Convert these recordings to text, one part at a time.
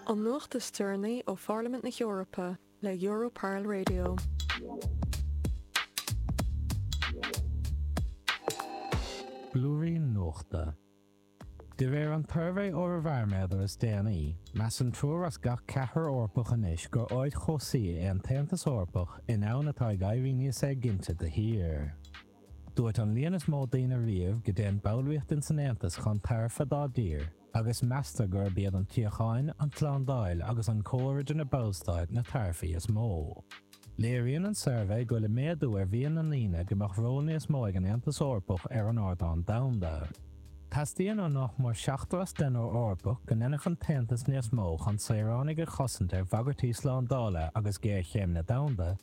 An nuacht is deireanaí ó Pharlaimint na hEorpa le Europarl Radio. Blúirín nuachta. De réir an tsuirbhé Eorabharaiméadar is déanaí, measann triúr as gach ceathrar Eorpach anois gur áit chobhsaí é an tAontas Eorpach i ndomhan atá ag éirí níos éiginnte de shíor. Dúirt an líon is mó daoine riamh go dtéann ballraíochtain san Aontas chun tairbhe dá dtír, agus meastar gurb iad an tsíocháin, an tslándáil agus an comhar idir na ballstáit na tairbhí is mó. Léiríonn an suirbhé go bhfuil méadú ar mhian na ndaoine go mbeadh ról níos mó ag an Aontas Eorpach ar an ardán domhanda. Teastaíonn ó nach mór seachtar as deichniúr Eorpach go ndéanfadh an tAontas níos mó chun saoránaigh a chosaint ar bhagairtí slándála agus géarchéimeanna domhanda,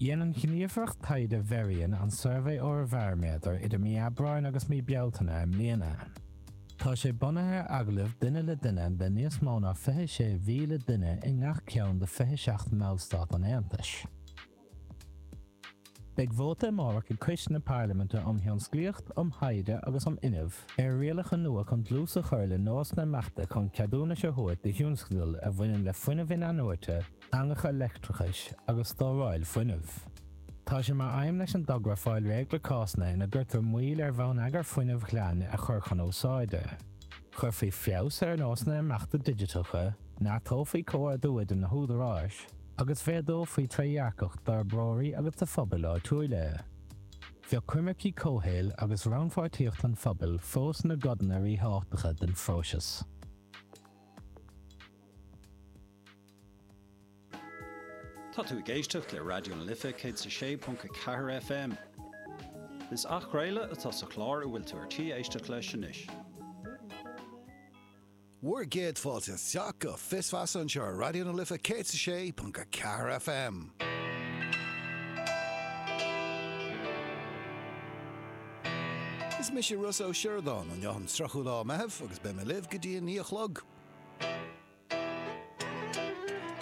Rinne an Ghníomhaireacht Taighde Verian an Suirbhé Eorabharaiméadair idir mí Aibreáin agus mí Bealtaine i mbliana. Tá sé bunaithe ar agallaimh duine le duine le níos mó ná 26,000 duine i ngach ceann de 27 mBallstát an Aontais. Beidh vóta amárach ag Coiste na Parlaiminte um Thionsclaíocht, um Thaighde agus um Fhuinneamh ar rialacha nua chun dlús a chur le nósanna imeachta chun ceadúnais a thabhairt do thionscadail a bhaineann le fuinneamh in-athnuaite, eangacha leictreachais agus stóráil fuinnimh. Tá sé mar aidhm leis an dtogra fáil réidh le cásanna ina gcuirtear moill ar bhonneagar fuinnimh ghlain a chur chun úsáide. Chuirfí feabhas ar nósanna imeachta digiteacha, neartófaí comhordú idir na húdaráis, agus mhéadófaí trédhearcacht d'fhorbróirí agus do phobail áitiúla. Bheadh coimircí comhshaoil agus rannpháirtíocht an phobail fós ina gcodanna ríthábhachtacha den phróiseas. Tá tú ag éisteacht le Raidió na Life 106.4 FM. Is athchraoladh atá sa chlár a bhfuil tú ar tí éisteacht leis anois. Bhur gcéad fáilte isteach go Fios Feasa anseo ar Raidió na Life 106.4 FM. Is mise Ros Ó Siordáin. Inniu an 30ú lá Meitheamh agus beidh mé libh go dtí a naoi a chlog.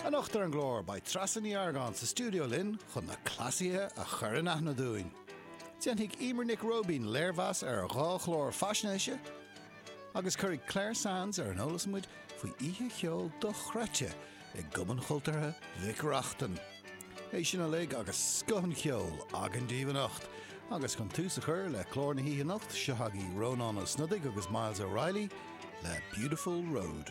Anocht ar an gclár, beidh Treasa Ní Argáin sa stiúideo linn chun na cleasaithe a chur in aithne dúinn. Déanfaidh Emer Nic Róibín léirmheas ar dhá chlár faisnéise agus cuirfidh Clár Sands ar an eolas muid faoi oíche cheoil dochreidte i gCumann Chultúrtha Mhic Reachtain. É sin uilig agus scoth an cheoil agam daoibh anocht. Agus chun tús a chur le clár na hoíche anocht, seo agaibh Rónán Ó Snodaigh agus Myles O'Reilly le Beautiful Road.